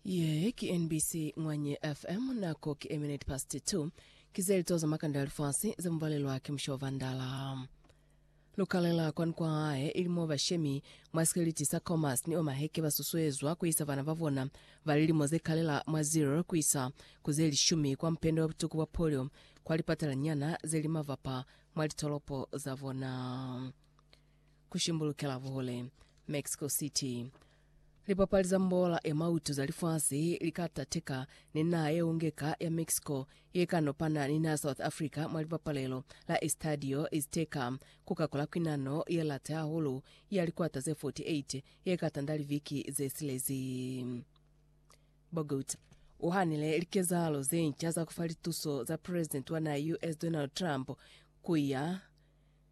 Ye ki NBC Ngwanye FM nako ki a minute past 2 ki ze lito za makanda ya lifasi ze mu balelwa ki Mushobo Vandala. Lukalela kwani kwa hae ili mo bashemi mwa sikeliti sa Khomas ni Omaheke ba susuezwa ku isa bana ba bona ba lilimo ze kalela mwa 0 ku isa ku ze lishumi kwa mupende wa butuku bwa polio kwa lipatalanyana ze li mavapa mwa litolopo za bona. ku shimbulukela buhule Mexico City. Lipapali za mbola ya mautu za lifasi li ka tateka ni naha ye ungeka ya Mexico ye ka nopana ni naha South Africa mwa lipapalelo la Estadio Azteca ku ka kola kwinano ye late hahulu ya likwata ze 48 ye ka tanda liviki ze silezi. Bogut u hanile likezahalo ze nca za ku fa lituso za president wa naha ya US Donald Trump ku ya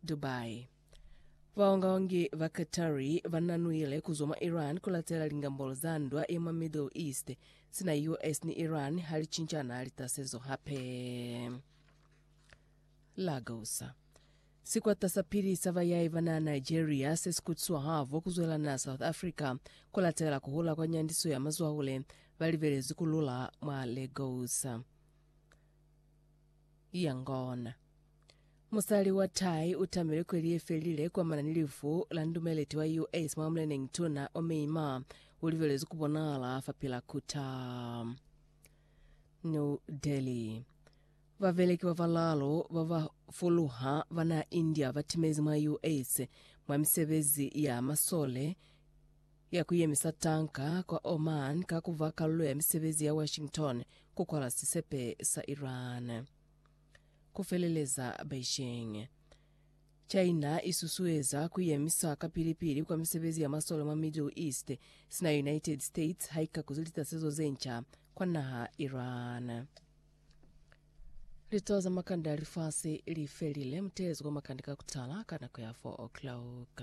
Dubai. Baongaongi ba Qatari bananuile kuzwa mwa Iran kulatela lingambolo za ndwa ya mwa Middle East sina US ni Iran halicinchana litasezo hape. Lagos. Sikwata sa pili sa bayahi bana Nigeria sesikutiswa havo kuzwela na South Africa kulatela kuhula kwa nyandiso ya mazwahule balibelezi kulula mwa Lagos. Yangon. Musali wa Thai u tamilwe kweli ye felile kwamana ni lifu la ndumeleti wa US mwa muleneñi tuna o Myanmar u libelezwi ku bonahala fa pila kuta. New Delhi. Babeleki ba balaalu ba ba fuluha ba naa India ba timezi mwa US mwa misebezi ya masole ya ku yemisa tanka kwa Oman ka ku ba kalulo ya misebezi ya Washington ku kwala sisepe sa Iran. Ku feleleza Beijing, China i susueza ku yemisa kapili-pili kwa misebezi ya masole mwa Middle East sina United States ha i ka kuzi litasezo ze nca kwa naha Iran. Litowa za makande a lifasi li felile. Muteezi wa makande ka ku tala ka nako ya 4 o'clock.